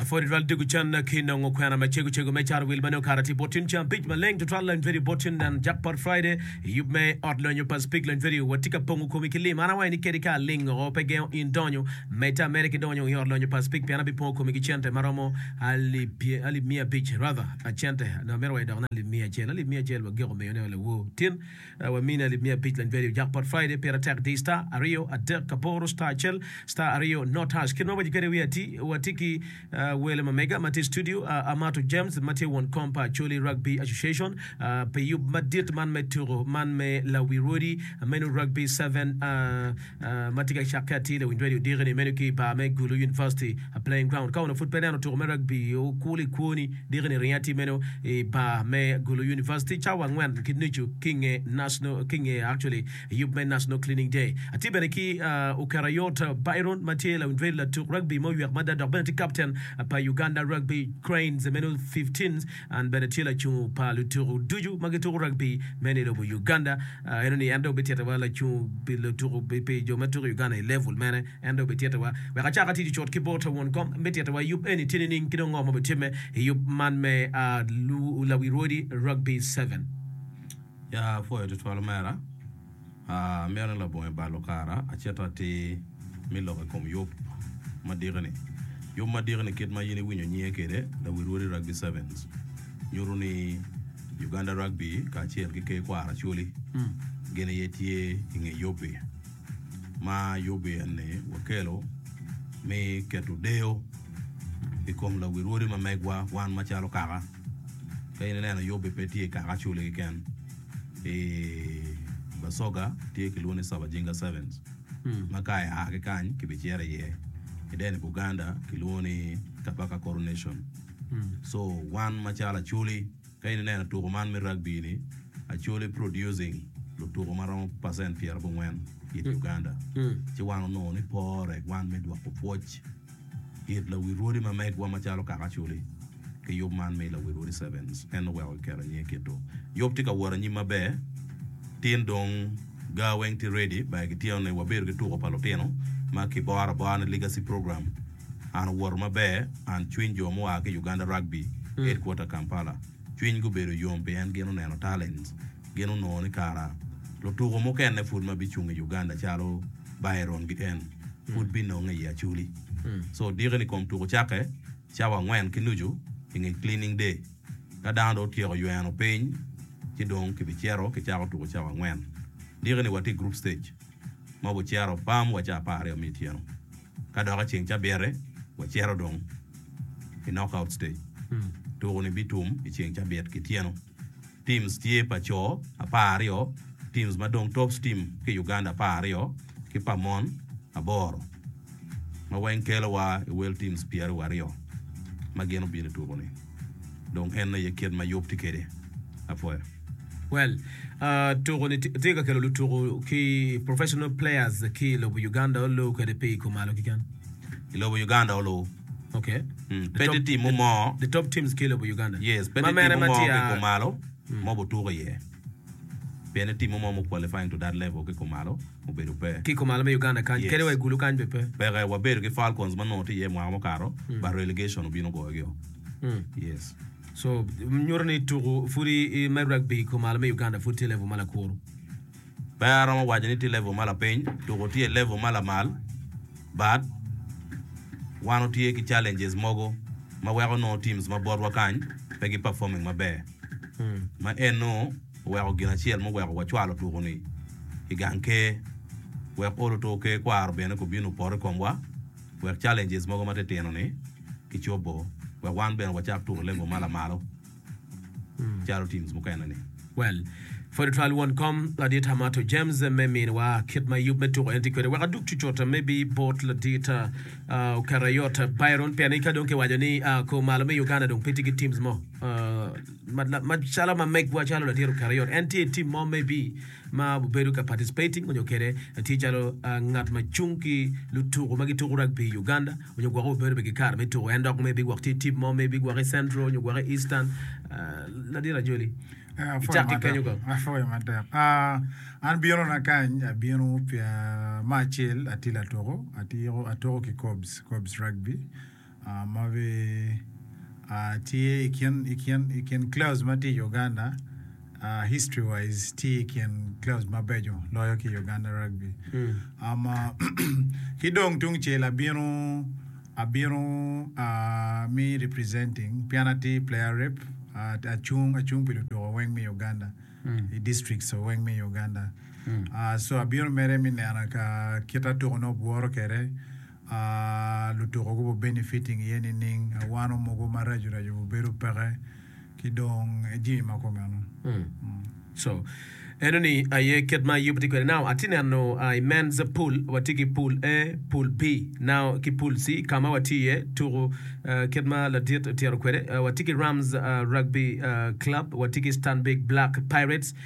Apwod tutwal diko canna ki nongo kwena macego cego me cato wil ma nongo kara tye bot yen cam pic maleng tutwal lony peri bot yen nen Jackpot Friday i yub me ot lony o Pacific lony peri wa tye ka pongo komi ki lim an awayo ni kadi ka aling o pe gengo in donyo me ta mere ki donyo i ot lony o Pacific pien abi pongo komi ki cente ma romo alip alip miya abic rather a cente nongo amito wa idok ne alip miya acel alip miya acel wa giko miyo ne wa lawo tin Wamini alip miya abic lany value jackpot Friday pire tek di star aryo adek aboro star acel star aryo not hash kit ma wawaco kwede wiye ati watye ki wele ma mega ma tye i studio Amato James ma tye won kom pa Acholi Rugby Association pi yub madit man me tuko man me lawi rwodi meno Rugby seven ma tye ka cakke atir lawiny redio Dikeni meno ki i bar me Gulu University Playing Ground. Ka onongo pud pe ineno tuko me rugby, okur i kwoni, Dikeni ringo atir meno i bar me Gulu University cawa angwen ki nucu ki i nge National, ki i nge actually yub me National Cleaning Day. Atye bene ki Okerayot Byron ma tye lawiny redio latuk rugby ma oywek mada dok bene tye captain pa Uganda Rugby Cranes meno 15s. An bene tye lacungo pa lutuku ducu ma gituku rugby me ni lobo Uganda. Eno ni en dong bityeta wa lacungo pi lutuku pi jo me tuku i Uganda i level mene. En dong bityeta wa wek acak atic i cut ki bot ta won kom. Bityeta wa i yub eni tye nining ki dong ngo ma bitimme i yub man me Lawirwodi Rugby Seven? Apwoyo tutwal omera. Amyero ni labongo i balo kara acito atir me lok i kom yub madiki-ni. Yub madiki-ni kit ma in iwinyo nyinge kwede, Lawi Rwodi Rugby Sevens, nyuto ni Uganda Rugby kacel ki Ker Kwaro Acholi gin aye tye i nge yub-bi. Ma yub-bi eni wakelo me keto deyo i kom lawi rwodi ma megwa wan macalo kaka. Ka in ineno yub-bi pe tye i kaka Acholi keken. I Basoga tye kilwongo ni Sabajinga Sevens ma ka ia ki kany kibicito iye. I deno Buganda kilwongo ni Kabaka Coronation. So wan macalo Acholi ka in ineno tuko man me rugby ni Acholi producing lutuko ma romo percent pyerabongwen it Uganda. Ci wan onongo ni pore wan me dwoko pwoc. It lawi rwodi ma megwa macalo kaka Chuli ki yub man me lawi rwodi Sevens en oweko kiketo i nyinge kit-tu. Yub tye ka wot anyim maber tin dong gaa weng tye ready bar kityeno ni wabedo ki tuko pa lutino ma ki boro abora ni Legacy Program an owoto maber and cwiny jo mua ki Uganda Rugby Headquarter Kampala cwiny gubedo yom pien gin oneno talents gin onongo ni kara lutuko mukene pud ma bicung i Uganda calo Byron gi en pud binonge i Acholi. Co odike ni kom tuko cakke cawa angwen ki nucu i nge Cleaning Day. Ka dano dong otyeko yweno piny, ci dong kibicito kicako tuko cawa angwen. Dike ni watye i Group Stage ma wabicito pam wa cawa apar aryo me otyeno. Ka dok i ceng cabite, wacito dong i Knockout Stage. Tuko ni bitum i ceng cabit ki tyeno. Teams tye pa co apar aryo, teams madong Tops team ki Uganda apar aryo ki pa mon aboro ma weng kelo wa i World teams pyera wa aryo ma gin obino i tuku ni dong en aye kit ma yub tye kede apoya. Well, tuku ni tye ka kelo lutuku ki professional players ki i lobo Uganda olu kede pi i kumalo kiken? I lobo Uganda olu. Okay. Mm, pe tye timmu mo. The top teams ki lobo Uganda. Yes, pe Ma tye mere timmu ma mo tye ki a- kumalo ma obutuko iye. Pien ni timmu mo mu-qualifying to that level ki kumalo obedo pe. Ki kumalo me Uganda kany, Yes. kadi wa i gulu kany bene pe. Peke, wabedo ki Falcons ma nongo tye iye mwaka mukato, but relegation obino ogoyogio. Mm. Yes. So, nyuto ni tuku pud i- i me rugby i kumalo me Uganda pud tye level ma lakuru. Pe aromo waco ni tye level ma lapiny tuku tye level ma lamal but wan watye ki challenges mogo ma weko nongo teams ma botwa kany pe gi performing maber ma eno oweko gin acel muweko wacwalo tuku ni i gang ker wek olo oto ker kwaro bene ku bino poto i komwa wek challenges mogo ma titino ni kicobo wek wan bene wacak tuku i level ma lamalo. Caro teams mukene ni. Well, pwod twal won kom ladit Amato James me minwa kit ma yub me tuko en tye kwede wek adug cucut maybe bot ladit ah, oketa yot Byron pien ni ka dong kiwaco ni ah, kor malo me Uganda dong pe tye ki teams mo ah, ma- la- ma calo ma megwa calo ladit oketa yot en tye i team mo maybe ma obedo ka participating onyo kede tye calo ah, ngat ma cung ki lutuku ma gituku rugby i Uganda onyo gwoko wa bedo bene ki kare me tuko en dok ma ibigwok tye tip mo ma ibigwok i central onyo gwok i eastern ladit ajoli icak ki kenyo kong. Apwoyo matek. Ah, an bino na kany, abino pye me acel atye latuko, atyeko atuko ki Kobs, Kobs Rugby. Ah, ma be ah, tye i kin i kin i kin clubs ma tye i Uganda. History wise tye i kin clubs mabeco loyo ki Uganda Rugby. Ki dong tungcel abino abino me representing pien atye player rep acung acung pi lutuko weng me Uganda i districts o weng me Uganda. So abino mere me neno ka kit atuko nongo bworo kwede. Aaa lutuko gubo benefiting iye nining a wano mogo maraco raco bu bedo peke ki dong e jimi ma komeno. So eno ni aye kit ma Ayub tye kwede. Now atye neno uh, i men's pool watye ki pool A, pool B, now ki pool C ka ma watye iye tuku uh, kit ma ladit otyero kwede uh, watye ki Rams uh, Rugby uh, Club, watye ki Stanbic Black Pirates,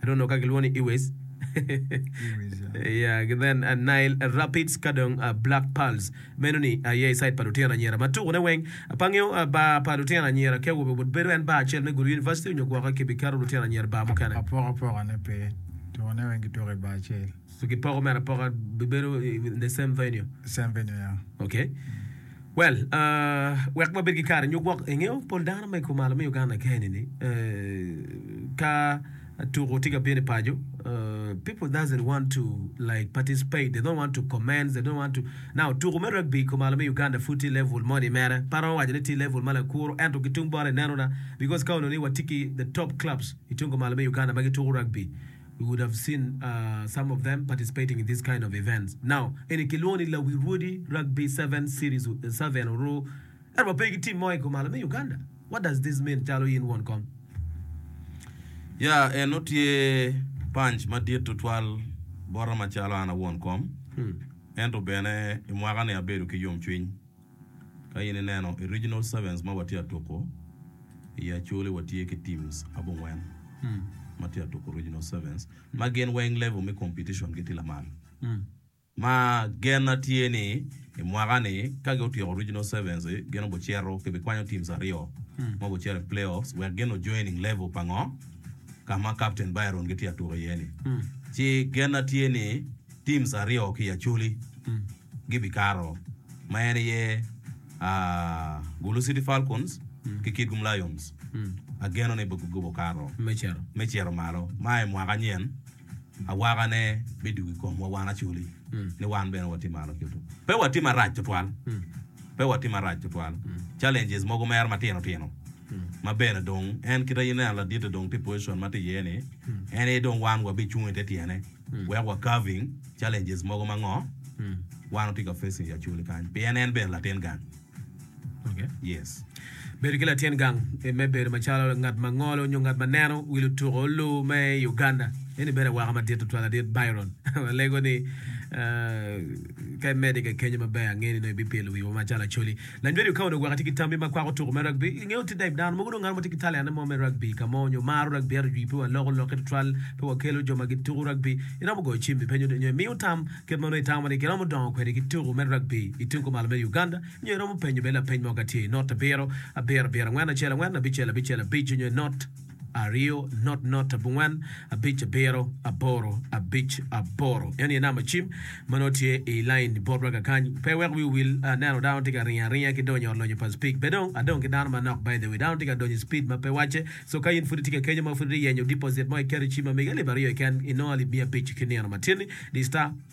I don't know ka gilwongo ni Iwes yeah gi then uh, Nile Rapids ka dong uh, Black Pearls. Meno ni aye i side pa lutino anyira ma tuko ne weng. Pa ngeyo uh, bar pa lutino anyira ki awobe but bedo en bar acel me Gulu University onyo gwoke ki bi keto lutino anyira i bar mukene. Apoko apoka ne pe, tuko ne weng ki tuko i bar acel. So ki poko mere apoka bi bedo in the same venue? Same venue yeah. Okay. Well, uh, wek wabed ki kare nyo gwok, ingeyo pol dano ma i kumalo me Uganda keni ni, uh, ka tuko tye ka bino i paco, uh, people doesn't want to like participate, they don't want to comments, they don't want to, now tuko me rugby i kumalo me Uganda pud tye level mo ni mere, pe aromo waco ni tye level ma lakuro, ento ki tung bot ineno na, because ka onongo ni watye ki the top clubs i tung kumalo me Uganda ma gituko rugby, You would have seen some of them participating in these kind of events. Now, eni kilwongo ni Lawi Rwodi Rugby Seven Series Seven Oru ento wa pe ki team mo i kom malo me Uganda. What does this mean calo in won kom? Ya, eno tye panc madit tutwal bota macalo an awon kom, ento bene i mwaka ni abedo ki yomcwiny. Ka in ineno i Regional Sevens ma watye ka tuko i Acholi watye ki teams abongwen ma tye ka tuko Regional Sevens ma gin weng level me competition gi tye lamal. Ma gen na tye ni i mwaka ni ka gi otyeko Regional Sevens gin obi cito ki bi kwanyo teams aryo ma obi cito i play offs wek gin o joining level pa ngo ka ma Captain Byron gitye ka tuko iye ni. Ci gen na tye ni teams aryo ki i Acholi gibikato ma en aye Gulu City Falcons ki Kitgum Lions. Ageno ni gikobo kato me cito malo ma i mwaka nyen awakane bidwogo i komwa wan Acholi ni wan bene watye malo kito. Pe watye marac tutwal, pe watye marac tutwal. Challenges mogo mere matino tino ma bene dong en kit aye ineno ladite dong tye i position ma tye iye ni en aye dong wan wabicung i te tyene. Wek wa carving challenges mogo ma ngo wan watye ka facing i Acholi kany pien en bene latin gang. Okay. Yes. Bedo ki latin gang eh, me bedo macalo ngat ma ngolo nyo ngat ma neno wi lutuko olu me i Uganda, eni bedo awaka madit tutwal adit Byron. Walego ni ah, ka imede keken yo maber ange ni nongo ibipyelo wiwa macalo Acholi. Lanyweri okawo dong weka tye ki tammi ma kwako tuko me rugby. I nge otit Dave, dano mogo dong ngat mo tye ki talene mo me rugby i ka mo nyo maro rugby ento jwi pe waloko lokke tutwal pe wakelo jo ma gituko rugby. Iromo goyo cim ipenyo nyo imiyo tam kit ma nongo itamo ni giromo dongo kwede ki tuko me rugby i tung kumalo me Uganda nyo iromo penyo bene lapeny mo ka tye i not abiro abiro abiro angwen acel angwen abicel abicel abic nyo i not aryo, not not abongwen, abic abiro, aboro abic aboro. Eno aye namba cim ma nongo tye i lain bot wa kakany. Pe iwek wiu wil, aneno dano tye ka ringo aringa ki donyo lonyo pa speed. Be dong adong ki dano manok by the way. Dano tye ka donyo i speed ma pe wacce. So ka in pud itye ka kenyo ma pud ite yenyo deposit mo iketo i cim ma mege alip aryo keken inongo alip miya abic ki nino matin-ni di star.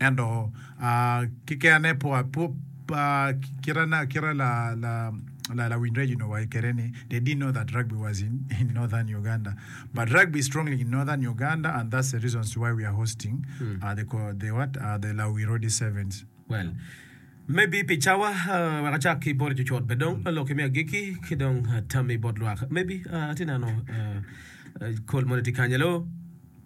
Ento keken-ne kite ma lawiny Reginald owaco kwede ni, They didn't know that rugby was in Northern Uganda. But rugby is strongly in Northern Uganda and that's the reason why we are hosting the Lawi Rodi Sevens. Well, maybe pi cawa wek acak ki bot cucut bene dong lokki me agikki ki dong tammi bot lwak. Maybe atye neno kol moni tye kany. Hello?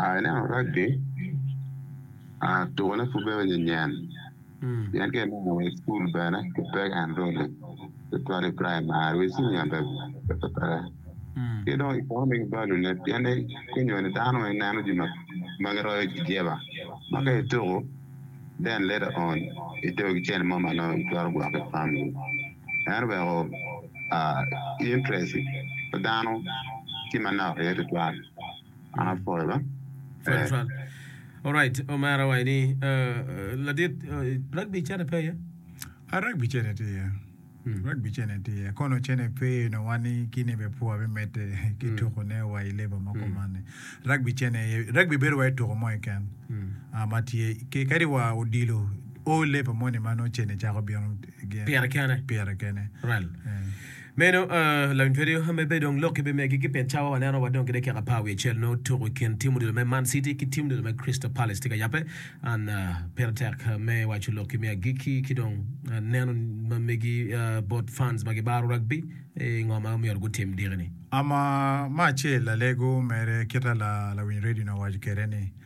Aa ineno raggi, aa tukone pud bedo nyenyen pien ka ineno wa i cukul bene ki peke enrolling tutwal i praimari wa i cinia bene pe peke ki dong economic value ne pien ni kunyo-ni dano weng neno jo ma giroyo jeba ma ka ituku then later on itero ki cente mo ma nongo itwero gwoko i famili. en oweko interest pa dano tye manok iye tutwal an apwoyo bene. Alright omera wa eni ladit rugby cene pe aye? A rugby cene tye iye rugby cene tye iye kono cene pe nongo wan ni kine bene pwoo pe medde ki tuko ne wa i level ma kuman ni rugby cene iye rugby bedo wai tuko mo keken ma tye kadi wa odilo o level moni ma nongo cene cako bino pire kene. Meno lawiny twero yo me bedo dong lok ki bimegi ki pien cawa waneno wa dong kede kika pa wiye cel nongo tuku i kin tim odilo me Man City ki tim odilo me Crystal Palace tye ka yabbe. An pire tek me waco lok ki me agikki ki dong neno ma megi bot fans ma gibaro rugby i ngo ma myero gutim diki ni. Ama me acel lalego mere kita lawiny radio ni owaco kede ni.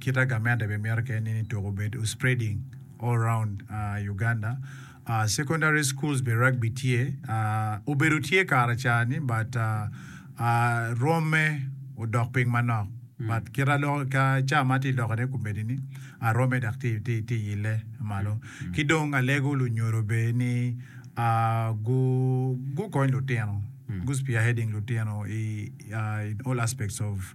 Kita gamente be mito keken ni tuko obed o spreading all round Uganda. Secondary schools be rugby tye, obedo tye kare ca ni but rwomme odok piny manok. But kita loko ka ca ma tye loko ne kumedi ni rwomme dok tye yille malo. Ki dong alego lunyodo be ni gu gukony lutino, gu spearheading lutino in all aspects of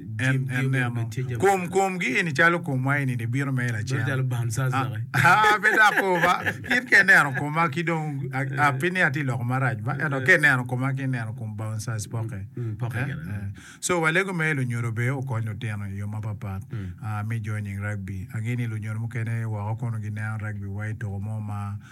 En neno kom komgi eni calo komwa eni ni bino mere lacen. Bedo calo bam Sasaki. Ah, ah, pe dok ko ba. In ka ineno koma ki dong, ah, ah, pi ni atye loko marac ba. Ento ka ineno koma ki ineno kom bouncers poke. Mm, poke Eh, gire. eh. So walego me lunyodo bene okony lutino i yo mapapat. Ah, me joining rugby. Angeni lunyodo mukene woko kono gineno rugby wa i toko mo ma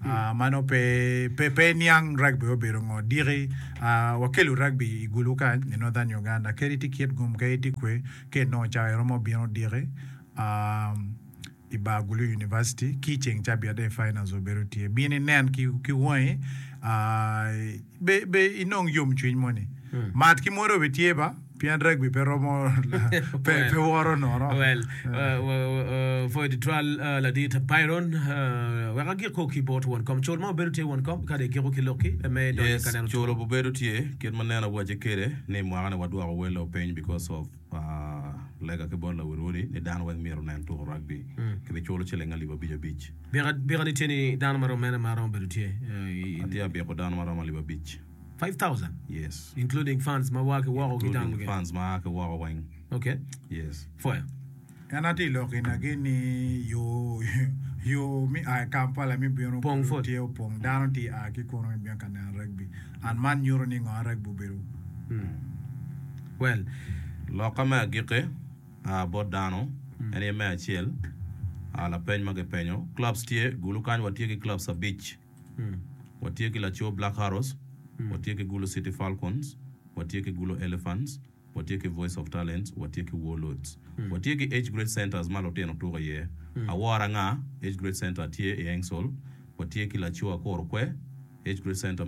ma nongo pe pe pe niang rugby obedo ngo diki wakelo rugby i gulu kany i northern Uganda kadi tye kit gum kadi tye kwe ka inongo cawa iromo bino diki i bar gulu University ki ceng cabiat aye finals obedo tye bino inen ki wangi Be inong yomcwiny moni? Mat ki mwado bitye ba, pien ragbi pe romo pe woro nono. Well, for editorial ladit Byron, wek agik kong ki bot won kom. Cul ma wabedo tye won kom kadi igiko ki lokki me donyo i ka neno two. Yes, cul obedo tye. Kit ma nen awace kede ni mwaka ni wadwoko welo piny because of. Lega ki bot lawote-woti ni dano weng myero onen tuko rugby. Kibiculo ciling alip abic abic. Bika ni tye ni dano ma romo mene ma romo bedo tye i. Atye abiko dano ma romo alip abic. Five thousand? Yes. Including fans ma waa ki woko ki dano mukene? Including fans ma aa ki woko weng. Okay. Yes. Pwoyo. En aye tye i lok inage ni yo me a i Kampala me bino kulu tye opong. Dano tye a ki kunu me bino ka neno ragbi. And man nyuto ni ngo a ragbi obedo kulu? Loka me agikki a bot dano en aye me acel a lapeny ma kipenyo. Clubs tye gulu kany. Watye ki clubs abic. Watye ki laco Black Arrows, watye ki gulu City Falcons, watye ki gulu Elephants. watye ki Voice of Talents, watye ki Warlords, watye ki Age Grade Centres ma lutino tuko iye. Awor Anga Age Grade Centre tye i Aingsole, watye ki Laco Akor Okwe Age Grade Centre,